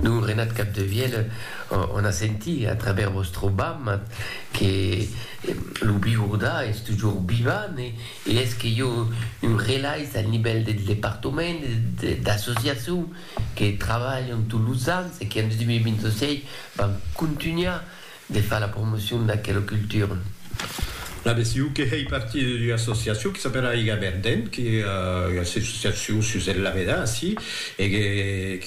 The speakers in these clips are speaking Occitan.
Lo Renat Capdevièlh o n'a sentit a travèrs vòstre bam que lo Bigourda es tujor vivant e es que jo un relais al nivèl deth departament e d'associacion que trabalhan tots los ans e que en 2026 van contunhar De far la promocion d'aquela cultura. La BCU que hèi partir d'ua associacion que s'apèla Aiga Verdent, que ua associacion sus el Laveda, ací, e que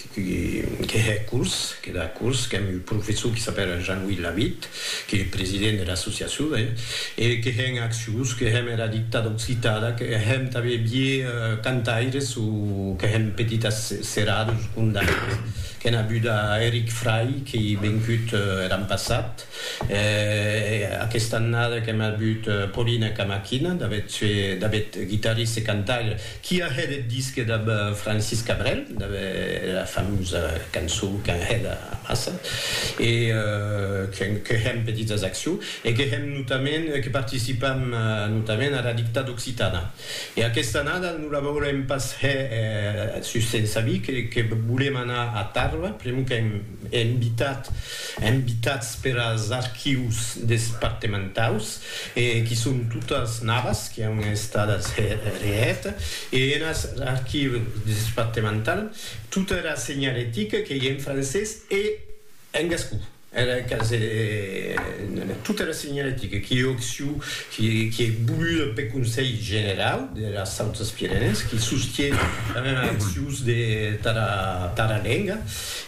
que hè curs, que da curs, qu'èm un professor que s'apèla Jean-Louis Lavitte, que hè president de l'associacion, ben, e que hè en accions, que hèm era dictada occitada, que hèm tanben vier cantaires o que hèm petitas serades o condaires. Qu'en abuda a Eric Fray qu'ei vencut er an passat, e aquesta annada qu'en abut Paulina Camaquina, d'avet guitarriste e cantaire, qui a hèt eth disque dab Francis Cabrel, dab era famosa cançon qu'an hèt amassa, e que hèm petitas accions, e que hèm notament, que participam notament ara Dictada Occitana. E aquesta annada non la veurem pas hè sus se'n sabir que volem anar a Tarba, pr'amor qu'èm invitat, invitats per as archius despartementaus e qui son totas navas qui an estadas hè reèta e en as archius despartemental tota era senhalética qu'ei en francés e en gascon. Era casa en tota era senhalética qui occiu qui ei volua peth Conselh Generau deras Autas Pirenèes qui sostie era accius de tara lenga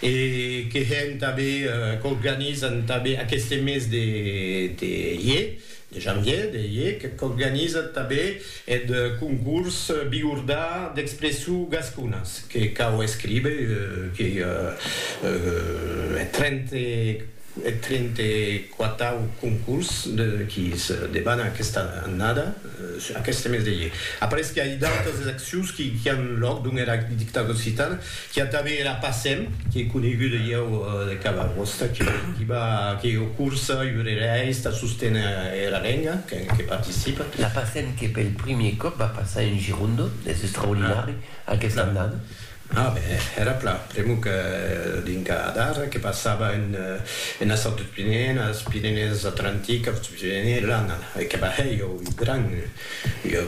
e que hèn tanben qu'organizan tanben aqueste mes de ier De janvier de iec qu'organizat tabé eth concurs Bigordà d'expressu gasconas que cau escribe que eth trente-quatau concurs qui se debana aquesta annada, aqueste mes de iec. Après que ai d'autas accions qui an lòc dons era dictadura occitana, Qu'i a tanben era Passem, qu'ei coneguda ieu de cada costat, qu'i va, que ei ua cursa iurerèis tà sosténer era lenga, que participa. La Passem que pel primier còp va passar en Girondo, es extraordinari aquesta annada. A ben, era plan, pr'amor que dinca d'ara que passava enes autres Pirenèes, Pirenèes Atlantiques, Autres Pirenèes, l'annada, e que va hèr ieu ua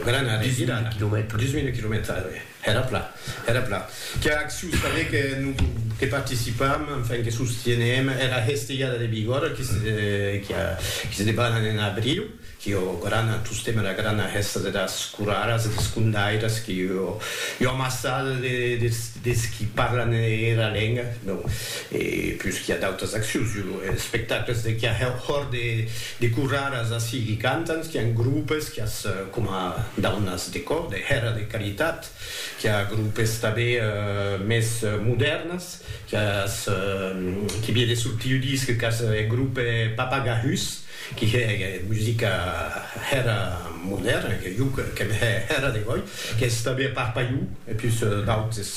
grana revirada, 10.000 quilomètres, 10.000 quilomètres, ara ben. Era plan, era plan. Qu'a acciu saber que no que participam, enfin que sostienem era hestejada de Bigòrra qui se qui a qui se debanan en abriu, qui o grana tostem era grana hesta de das coraras e des condairas qui o ua amassada de des des qui parlan era lenga, non e pus qui a d'autas accius, jo espectacles de qui a hòr de De corraras ací qui cantan, qu'i a un groupes qui as coma daunas de còr, de hèra de caritat, qu'i a groupes tabé mès modèrnas, qu'i as qui vie de sortir ua disc qu'as eth groupe Papagahus, qui hè musica hèra modèrna, que jo qu'èm hè hèra de gòi, qu'i as tabé a Parpaiu, e pus d'autes,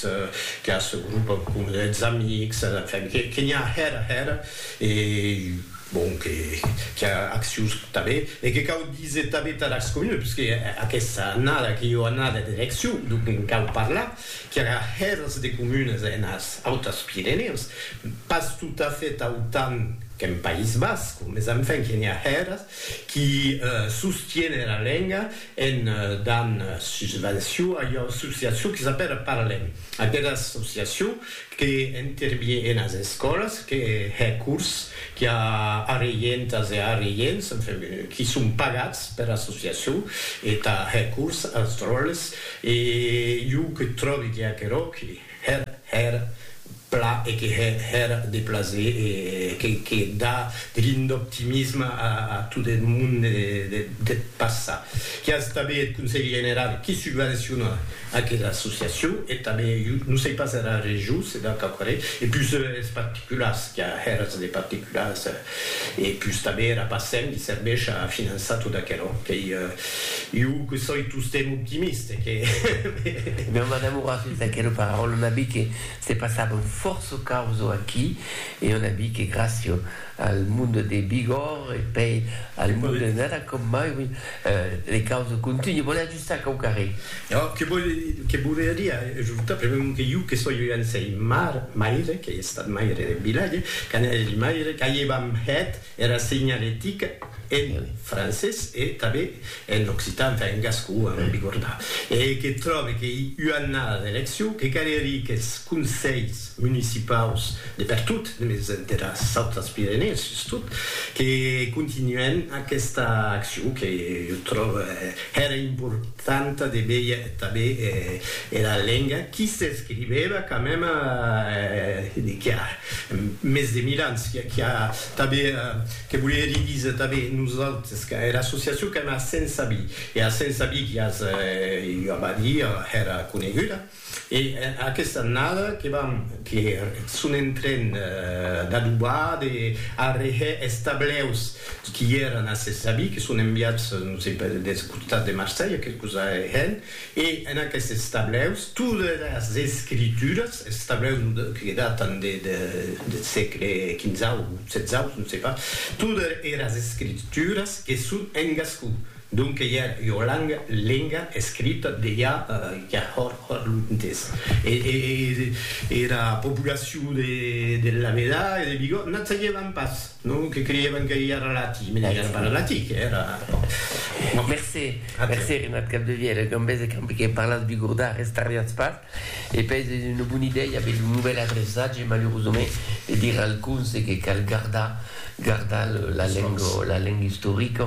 qu'i as groupes coma eths Amics, enfin, que n'i a hèra hèra, e. Bon, que qu'i a accions tanben e que cau díser tanben tà las comunes, puisque aquesta annada qu'ei ua annada d'eleccion, donc en cau parlar, qu'i aga hèrs de comunes enas Autas Pirenèus, pas totafèt autant qu'en País Basc, mes enfin que n'i a hèrs qui sostienen la lenga en dan susvenció a ua associacion qui s'apèla Parlem. Aquera associacion que intervie enas escòlas, que hè cors, qu'i a arreientas e arreients, enfin, qui son pagats per associacion, e tà hè cors als dròlles, e jo que tròbi que aquerò que hè hèr pla e que hè hèr de plaser e que que dà de l'ind'optimisme a a tot eth monde deth passat, qu'i a establir eth Conselhi General qui subvenciona Aquela associacion e tanben, jo non sei pas era region se deu qu'aquarè, e pus es particulars, qu'a hèras de particulars, e pus tanben era Pacem li serveish a finançar tot aquerò, qu'ei jo que soi tostemp optimiste, que he. Non, m'an amorat sus d'aquela paraula, on a vist que se passavan fòrça causo aquí, e on a vist que gràcia al monde de Bigòrre e pei al monde de Nada com mai, oui, les causes continuent. Sac au carré. Ò, que vòl, que volia dire ajorta, pr'amor mon que jo que soi ua ansèi mar, maire, qu'ei estat maire deth vilatge, qu'an hègi maire, qu'aievam hèt era segnaletica en francés e tanben en occitan, enfin en gascon, a non bigordar, e que tròbe qu'ei ua annada d'eleccion, que calerie qu'es conselhs, municipaus de pertot, mes de las autras Pirenèes sustot, que continuèn aquesta accion que jo tròbe hèra importanta de veir tanben era lenga qui s'escrivèva quand même qui a mes de mil ans, qui a tanben, que volie hèr díser tanben nosautres, qu'era associacion qu'èm a Sensabí, e a Sensabí qui as ua badia hèra coneguda. E aquesta annada que vam que son en tren d'adobar, de arreher es tableus qui èran a ses avis, que son enviats, non sei pas, deth costat de Marselha, que cosa hèn, e en aquestes tableus todas es escrituras, es tableus que datan deth sègle quinzau o setzau, non sei pas, todas eras escrituras que son en gascon. Donc que ja ua langa, lenga, escrita de ja ja hòr hòr lontes. E era populacion de de Lameda e de Vigo n'a saiévan pas, non? Que creiévan que ja era lati, me n'ai ara pas lati, que era bon. Mercé, mercé Renat Capdevièl, e qu'an bèse qu'an que parlatz bigordà, restarriatz pas, e pèi es una bona idèia aver lo novèl adreçatge, malurosament, de dire al conse que cal gardar gardar la lenga la lenga istorica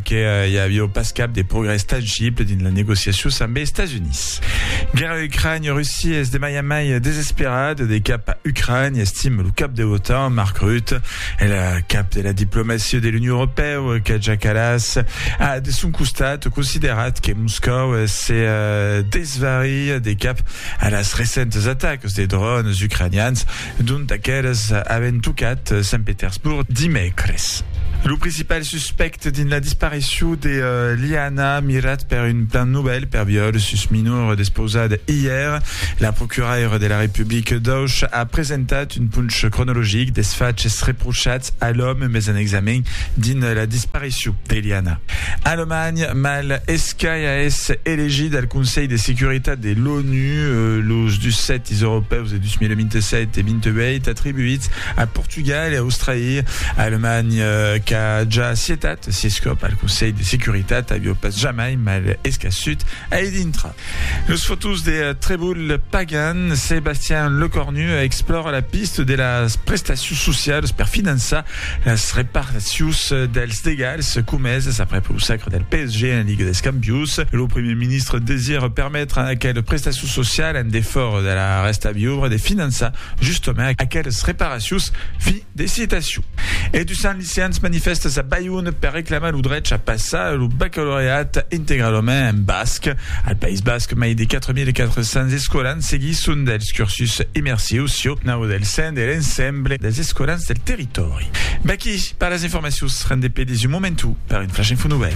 que i avió pas cap de progrès tangible dins las negociacions ambe Estats Units. Guèrra Ucrània, Russia es de mai en mai desesperada de cap a Ucrània, estime lo cap de l'OTAN, Mark Rutte. El cap de la diplomacia de l'Union Europèu, Kaja Kallas, a de son costat considerat que Moscòu se desvaria de cap a las recentes atacas de drònes ucranians D'ont aqueles avèn tocat Sant Petersborg dimècres. Lo principal suspècte dins la disparicion de Liana, mirat per un plan novèl per viòl sus minor despausat ièr, la procuraira de la Republica d'Auch a presentat un ponch cronologic des faches reprochats a l'òme mes en examen dins la disparicion de Liana. Alemanha, mal escai a èsser elegit al Conselh de Securitat de l'ONU, los 17 europèus de 2027 e 28 atribuits a Portugal e Australia, Alemanha qu'a ja cietat s'escòp al Conselh de Securitat avió pas jamai mal escassut ai dintra. Los fotós de Trèvol Pagan, Sebastian Lecornu explòra la pista de las prestacions socialas per finançar las reparacions dels degats comesas aprèp lo sacre del PSG en Liga des Campions. Lo Primièr Ministre desira permetre aquelas prestacions social en defòra de la rèsta viubre de finançar justament aqueles reparacions. Fin de citacion. E du Sant Licians manifèstas a Balhon per reclamar lo drech a passar lo bacalaureat integralament en basc. Al País Basc, mai de 4.400 escolans seguisson dels cursus immersius sieu nau del sen de l'ensemble dels escolans del territòri. Vaquí per las informacions. Rendé pedís un momentu per un Flash Info Nouvèl.